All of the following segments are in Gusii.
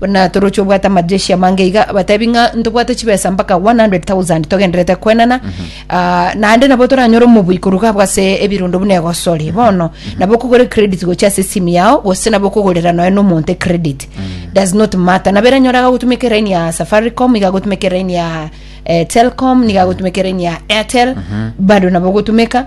Buna toroche obwate amajeshi amange iga, batebi ng'a ntobwate chibesa mpaka 100,000 togendererete koenana, ah, naende nabo toranyore omobui korwa gabo ase ebirundo buna egosori. Bono, nabo okogora ecredit gochia ase esimu yao, gose nabo okogorera nonya na omonto ecredit. Does not matter. Nabo eranyora iga agotumeka eraini ya Safaricom, iga agotumeka eraini ya, eh, Telcom, niga agotumeka eraini ya Airtel, bado nabo ogotumeka.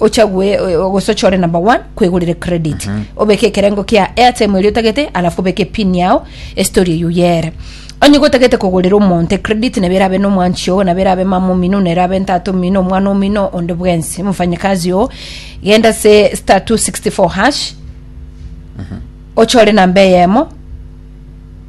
ochagwe o- gose ochore number one kwegorere credit obeke ekerengo kia airtime eria otagete alafu obeke pin yao estory eyio yere onye gotagete kogorera omonto credit nabo erabe nomwanchi oo nabo erabe mama omino nabo erabe ntata omino omwana omino onde bwensi mfanyakazi oo genda ase star 264 hash ochore namba eyemo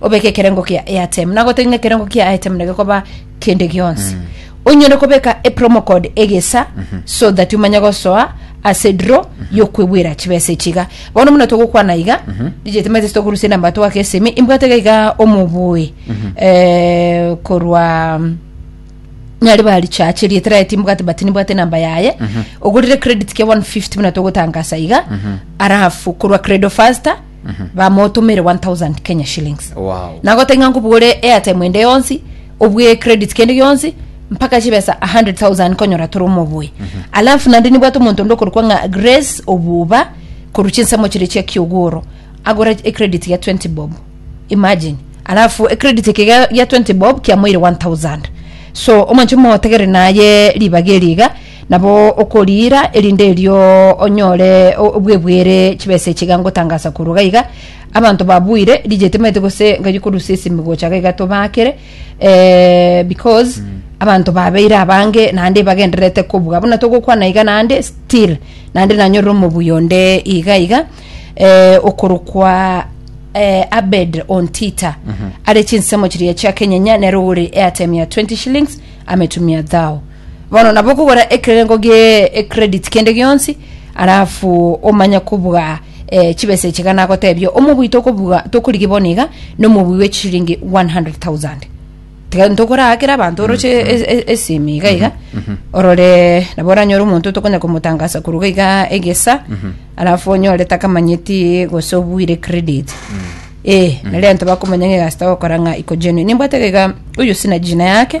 obeke ekerengo kia airtime na gotari ng'a ekerengo kia airtime na gekoba kende gionsi onyore kobeka e promo code egesa so that umanye gosoa ase draw yokwebwera chibesa echiga bono muna togokwana iga DJ Timothy tokorusia namba twake esimi imbwate iga iga omobui eh, korwa nyari bari chache riete raye timbwate but nimbwate namba yaye ogorire credit kia 150 muna togotangasa iga arafu korwa credo faster bamotumere 1000 kenya shillings Wow. nagotaki ng'a nkobwore airtime ende yonsi obwe credit kende gionsi mpaka chibesa 100000 konyora tore omoboyi alafu nandi nibwate omonto onde okorokwa ng'a grace obuba korwa chinsemo chire chia kiogoro agora ecredit ya 20 bob imagine alafu ecredit eke ga- ya 20 bob kiamoire 1000 so omwancho mogotegere naye ribaga eri iga Nabo okoriira, erinde erio onyore o- obwebwere chibesa echi iga ngotangasa korwa gaiga. Abanto babuire rijeti maete gose nkaji korusia esimi gocha gaiga tobaakere eh, because abanto babeire abange naende bagendererete kobua buna togokwana iga naende still naende nanyorire omobui onde iga iga eh, okorokwa eh, Abed Ontita are chinsemo chiria chia kenyenya nero ore airtime ya 20 shillings ametumia thou Bono nabo okogora ekerengo gie ecredit kende gionsi alafu omanye kobuga eh, chibesa echi iga nagotebia omobui tokobuga tokorigi bono iga nomobui we chishiringi 100000 tiga ntokoraakera abanto oroche e- e- esimi iga iga orore nabo oranyore omonto tokonya komotangasa koruga iga egesa alafu onyore takamanyeti gose obuire credit eh nari anto bakomanya ng'a egasi tagokora ng'a iko genuine nimbwate iga oyo sina jina yake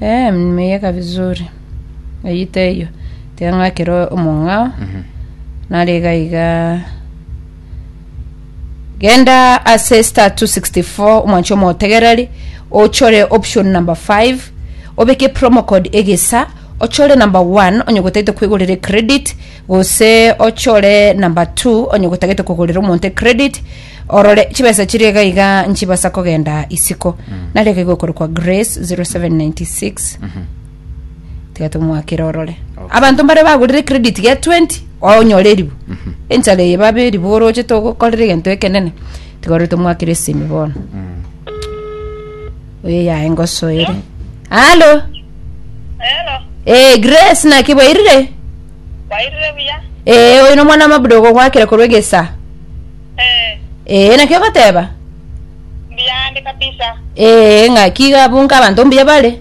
Eh, nimeyeka vizuri. Eyita eyo. Tiga ng'akere omong'ao. Nare iga iga. Genda ase star 264 omwanchi omotegereri ochore option number 5 obeke promo code egesa ochore number 1 onye gotagete kwegorera credit gose ochore number 2 onye gotagete kogorera omonto credit Orore chibesa chiria iga iga nchibasa kogenda isiko. Nare iga iga okorokwa Grace 0796. Tiga tomwakere orore. Abanto mbare bagorire credit ya 20 onyore eribu. Enchara eye babe eribu oroche togokorera egento ekenene. Tiga orore tomwakere esimi bono. Oyo yaye ngosoere. Halo. Hello, Eh Grace naki bwairire? kwairire buya? Eh oyo nomwana mabuda ogogwakera korwa egesa. Eh, ee naki ogoteba mbiande kabisa. ee ng'aki iga abwo nka abanto mbuya bare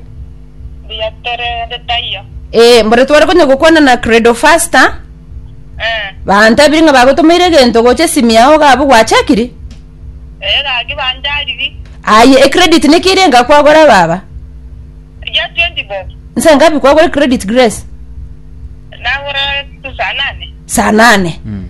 Mbuya tore onde taiyo. ee mbore tware konya gokwana na credo faster Eh, bantabiri ng'a bagotomeire egento gocha esimi yao iga abwo gwachakiri eh, gaki banjariri. aye ecredit niki ere engakwagora baba Ya 20 bob. nse ngapi kwagora ecredit grace Nagora saa nane. saa nane Mm.